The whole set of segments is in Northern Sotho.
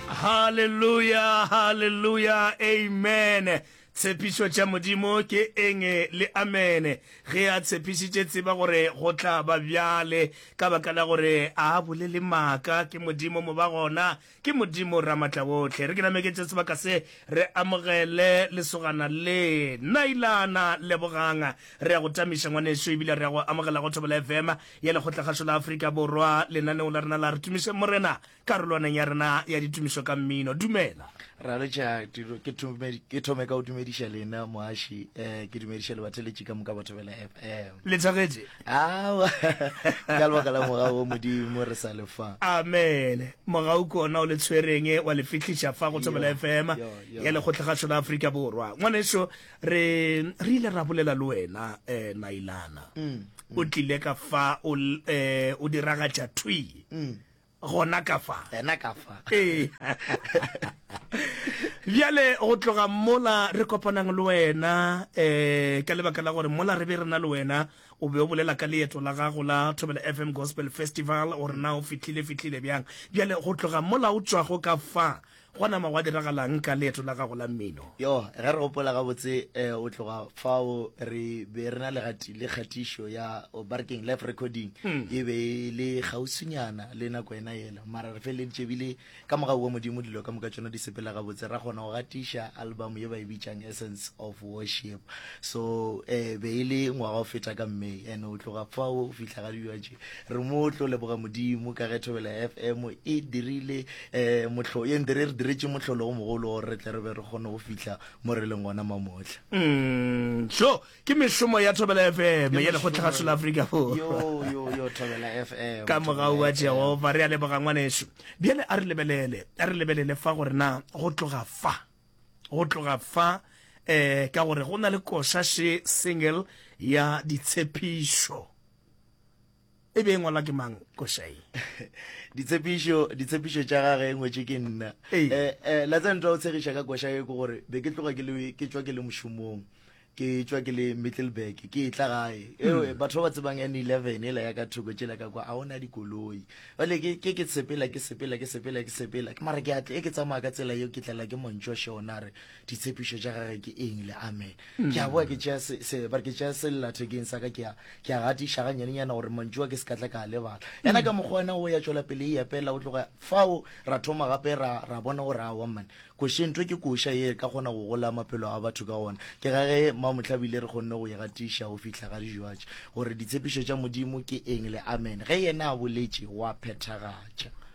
Hallelujah, hallelujah, amen. Tshepišo tša Modimo ke enge le amene. Ge a tshepišitše tseba gore go tla ba bjale ka baka la gore a bolele maaka ke Modimo mo ba gona ke Modimo ramatla wohle. Re ke nameketše sebaka se re amogele lesogana le nailana leboganga re ya go tamiša ngwaneso ebile re ya go amogela go thobela fm ya Lekgotla-kgašo la Afrika Borwa, lenaneo la rena la Re Tumišeng Morena, karolwaneng ya rena ya ditumišo ka mmino. Dumela. Ra letša dilo ke thome ke thome ka go dumediša lena moaši eh ke dumediša lebatheletši ka moka batho bela FM. Le thagetše? Awa ka lebaka la moga o modimo re sa le fa. Amen. Moga o kona o le tshwereng wa le fihliša fa go thobela FM Yo, yo, yo. ya Lekgotla-kgašo la Afrika Borwa. Ngwaneso re re ile ra bolela le wena um nailana mm, mm. o tlile ka fa o eh, o diragatša thwi mm. gona ka fa ena ka fa ee bjale go tloga mola re kopanang le wena um ka lebaka la gore mola re be re na le wena o be o bolela ka leeto la gago la thobela fm gospel festival gore na o fitlhile fitlhile bjang bjale go tloga mola o tswago ka fa Gwa nama gwa diragalang ka leeto la gago la mmino? Yo, ge re gopola gabotse, go tloga fao re be re na le le kgatišo ya, oh, ba re keng, live recording, e be e le kgauswinyana le nako yena yela. Mara re feleleditše ebile ka mogau wa Modimo dilo ka moka tšona di sepela gabotse, ra kgona go gatiša album ye ba e bitšang Essence of Worship. So, e be e le ngwaga o feta ka May, and go tloga fao go fihla ga dilo tše, re mo tlo leboga Modimo ka ge Thobela FM e dirile um mohlo ye ndere re diretse mohlolo o mogolo gore re tle re be re kgone go fitlha mo re leng gona mamotlha Mm, so ke mešomo ya thobela fm ya lekgotla ga sola afrika borwa Yo, yo, yo, Thobela FM, ka mogau Thobela wa FM. jehova re a leboga ngwaneso bjale a re lebelele a re lebelele fa gore na go tloga fa go tloga fa um ka gore go na le koša se single ya ditshepišo e be e ngwalwa ke mang košai ditshepišo ditshepišo tša gage e ngwetše ke nna um la tsa ntwa o tshegiša ka koša e ke gore be ke tloga ke tswa ke le mošomong ke tswa ke le middleburg ke e tla gae hmm. batho ba ba tsebang n eleven e la ya ka thoko tšela ka kwa a ona dikoloi bale ke ke sepela ke sepela ke sepela ke sepela ke mara ke atle e ke tsamaya ka tsela eo ke tlela ke montšwa šona re ditshepišo tša gage ke eng le amen mm. ke a boa ke tšea sellathekeng sa ka ke a gatiša ga nyanenyana gore mantšu a ke se ka tla ka a lebala yana mm. ka mokgwa wena o ya tšwela pele e epela o tloga fao ra thoma gape ra bona gore a wamman koše ntho ke koša ye ka kgona go gola maphelo a batho ka gona ke ga ge mamotlhabile re kgonne go e gatiša go fitlha ga dijoatše gore ditshepišo tša modimo ke eng le amen ge yena a boletše wa phethagatša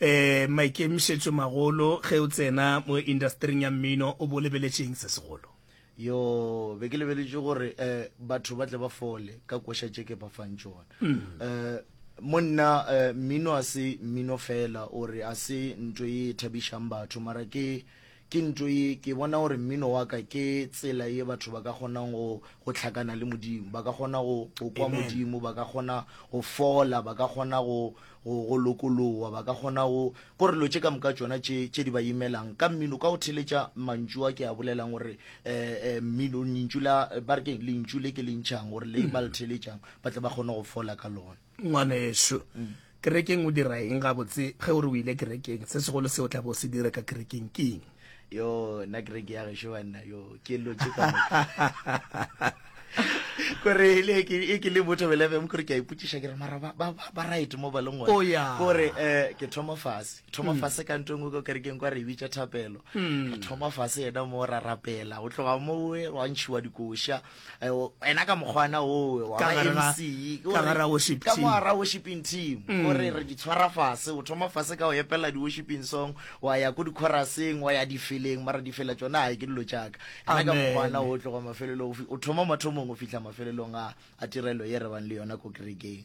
E, maikemišetšomagolo ge o tsena mo indastering ya mmino o bo o lebeletše'ng se segolo? Yoo, be ke lebeletše gore e, batho ba tle ba fole ka koša tše ke ba fang tšona. E, mo nna e, mmino a se mmino feela, o re a se nto ye e thabišang batho, mara ke, Ke nto ye, ke bona gore mmino wa ka ke tsela ye batho ba ka kgonang go, go hlakana le Modimo. Ba ka kgona go, go kwa Amen. Modimo, ba ka kgona go fola, ba ka kgona go, go, go lokolowa, ba ka kgona go, gore dilo tše ka moka tšona tše, tše di ba imelang, ka mmino, ka go theletša mantšu a ke a bolelang gore, eh, eh, mmino, lentšu la, ba re keng, lentšu le ke le ntšhang gore le ba le theletšang, ba tle ba kgone go fola ka lona. ngwaneso kerekeng o dira eng gabotse ge o re o ile kerekeng se segolo se o tla bo se dire ka kerekeng ke eng yo nna kereke ya gešo banna yo ke lotse ka kore e ke le botho belefm kore ke a ipotsiša ke re mara ba right mo ba leng oh, kore um ke thoma fase thoma hmm. fase ka nto engwe ko kerekeng kwa re bitša thapelo hmm. thoma fase yena mo ra rapela o tloga mowe wa ntšhiwa dikoša ena ka mokgwana owe wa mckamara worshiping team mm. ore re di tshwara fase o thoma fase ka go epela di-worshiping song wa ya ko dikhoraseng wa ya difeleng mara difela tsone ga ke dilo jaaka ena ka mokgwana o tloga mafelelong o thoma mathomong o fitlha mafelelong a tirelo ye re bang le yona ko kerekeng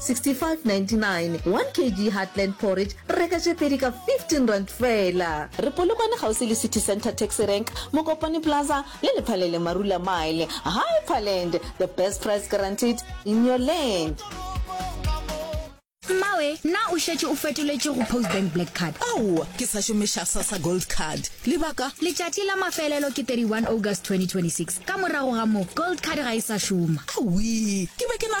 6599 1 kg Heartland porridge reka tše pedi ka R15 feela. Re Polokwane kgauswi le City Centre Taxi Rank, Mokopane Plaza le Lephalele Marula Mile. Hyperland, the best price guaranteed in your land. Mmawe, na o šetše o fetoletše go Postbank Black Card? Aowa, ke sa šomiša Sassa Gold Card. Lebaka? Letšatši la mafelelo ke 31 August 2026. Ka morago ga moo, Gold Card ga e sa šoma. Awii, ke be ke nagana.